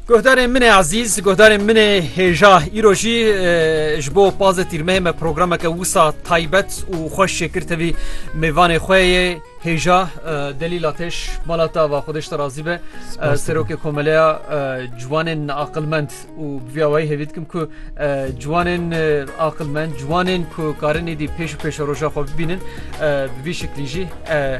Guhdarên min ê ezîz, guhdarên min ê hêja îro jî ji bo pazê tîrmeyê me programeke wisa taybet û xweş şêkir tevî mêvanê xwe yê hêja delî lateş malata va xwedeş te razî be serokê komeleya ciwanên aqilmend û bi vî awayî hêvî dikim ku ciwanên aqilmend ciwanên ku karin êdî pêş û pêşe roja xwe bibînin bi vî şiklî jî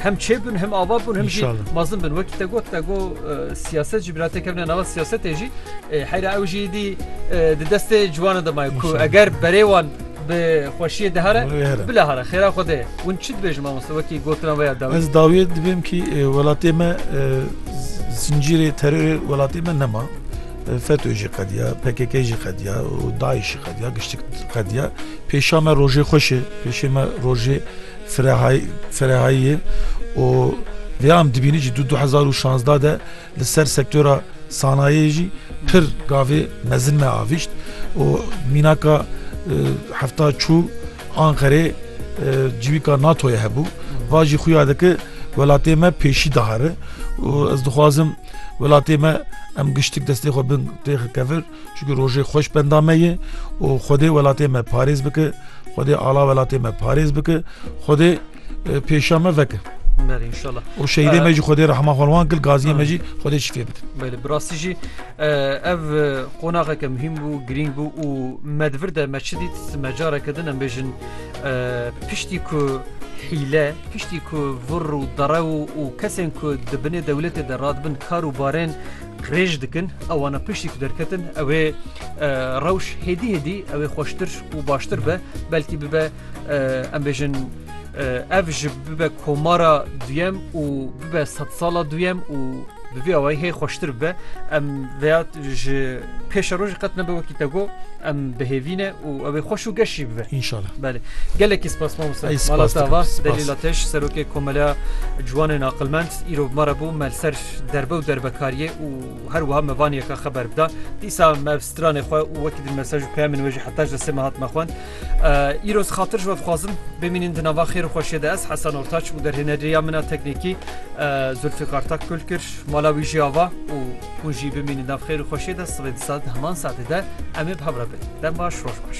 hem çêbin hem ava bûn hem jî mezin bin wekî te got te got siyaset jî birate kevne nava siyasetê jî heyra ew jî dî di destê ciwanan de maye ku eger berê wan bi xweşiyê dihare bila hare xêra xwe dê hûn çi dibêjin mamoste wekî gotina veya da ez dawiyê dibêm kî welatê me zincîrê terorê welatê me nema FETÖ jî qediya, pkk jî qediya û DAIŞ jî qediya, giştik qediya. Pêşa me rojê xweş e, pêşê me rojê ferehayî ye û vêya em dibînî jî du hezar û şazdeh de li ser sektora sanayiyê jî pir gavê mezin me avîşt û mînaka hefta çû Anqerê civîka NATO'yê hebû. Va jî xuya dike welatê me pêşî dihare û ez dixwazim Welatê me em giştik destê xwe bin têxi kevir çunku rojê xweş benda me ye û Xwedê welatê me parêz bike, Xwedê ala welatê me parêz bike, Xwedê pêşiya me veke. û şehîdê me jî Xwedê rehma xwe wan kil gaziyê me jî Xwedê şifê bidin. Belê bi rastî jî ev qonaxeke muhîm bû, girîng bû û me di vir de me çi dît me careke din em bêjin Piştî ku hîle, piştî ku vir û derew û kesên ku di binê dewletê de radibin kar û barên qirêj dikin, ewana piştî ku derketin ew ê rewş hêdî hêdî ew ê xweştir û baştir be, belkî bibe em bêjin ev ji bibe komara duyem û bibe sedsala duyem û Bi vî awayî hê xweştir bibe em veya ji pêşa roj qet nebe wekî te got em bihêvîne û ew ê xweş û geş jî bibe. Înşallah. Belê. Gelekî spas mamosta. Ey spas Mala dikim, tava spas. delî lateş serokê komeleya ciwanên aqilmend îro bi me re bû me li ser derbe û derbekariyê û her wiha me van yeka xeber bida. Dîsa me ev stranê xwe û wekî din mesaj û peyamên wê jî heta ji desê me hat me xwend. Îro ji xatir ji we dixwazim bimînin di nava xêr û xweşiyê de ez Hesen Ortaç û derhêneriya min a teknîkî Zulfîqar Takgul kir. Mala wî jî ava û hûn jî bimînin nav xêr û xweşiyê de sibê di saet di heman saetê de em ê bi hev re bin. Dem baş, roj baş.